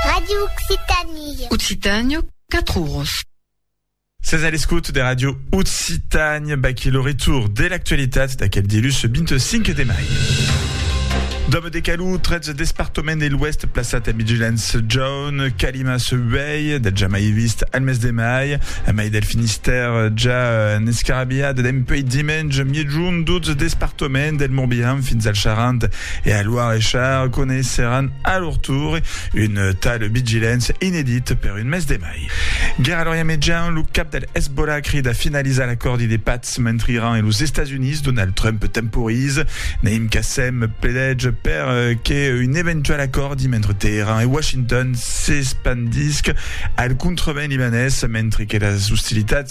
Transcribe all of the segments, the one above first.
Radio Occitanie. Occitània, 4 oros. Ses a l'escoute de Radio Occitània, baquí lo retour de l'actualitat d'aquel dilhus 25 de mai. Dòme de Calou, 13 despartament de l'Ouest plaçat a vigilance jaune, calima se uèi, de jamai vist al mes de mai, a mai del Finistère ja en escarabiat dempuèi dimenge miègjorn 12 despartament del Morbihan fins al Charente E al Loir e Char coneisseràn a lor tour un tal Vigilance inedit per un mes de mai. Guèrra a l'Orient Mejan, lo cap del Hezbollah crida finalizar l'acòrdi de patz mentre Iran e los Estats Units, Donald Trump temporiza. Naim Qassem pledètz per que un eventual acòrdi mentre Teheran e Washington s'espandisca al contrevent libanés mentre que las ostilitats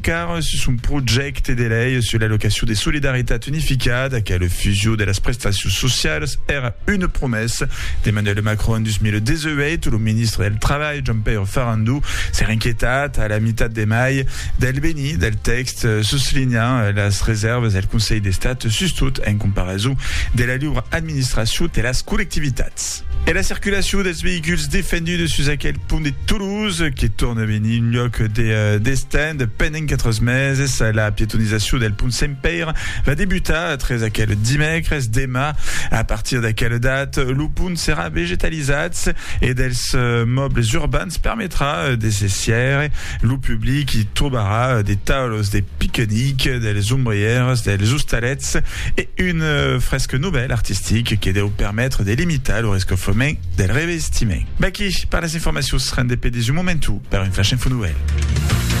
Car sus son projècte de lei sus la locacion de solidaritat unificada qu'a la fusion de las prestacions socialas, èra una promessa d'Emmanuel Macron en 2018, lo ministre del Trabalh, Jean-Pierre Farandou, s'èra inquietat a la mitat de mai del benir del tèxt, soslinhant las resèrvas del Conselh d'Estat sustot en comparason de la liura administracion de las collectivitats. E la circulacion dels veïculs defendudes sus aquel pont de Toulouse, que torna venir un lhòc de destand pendent 4 meses. La pietonizacion del pont Sent Pèire va debutar tres aquel dimècres. Demà, a partir d'aquela data, lo pont serà vegetalizat e dels mòbles urbans permetrà de se sièire Lo public i trobarà de taulos de piquenic, dels ombrièrs, dels ostalets e un fresc novèl artistic que deu permetre de limitar lo rescofrement del revestiment. V'aquí per las informacions rendez-pe de su momentu per un Flash Info Novèl.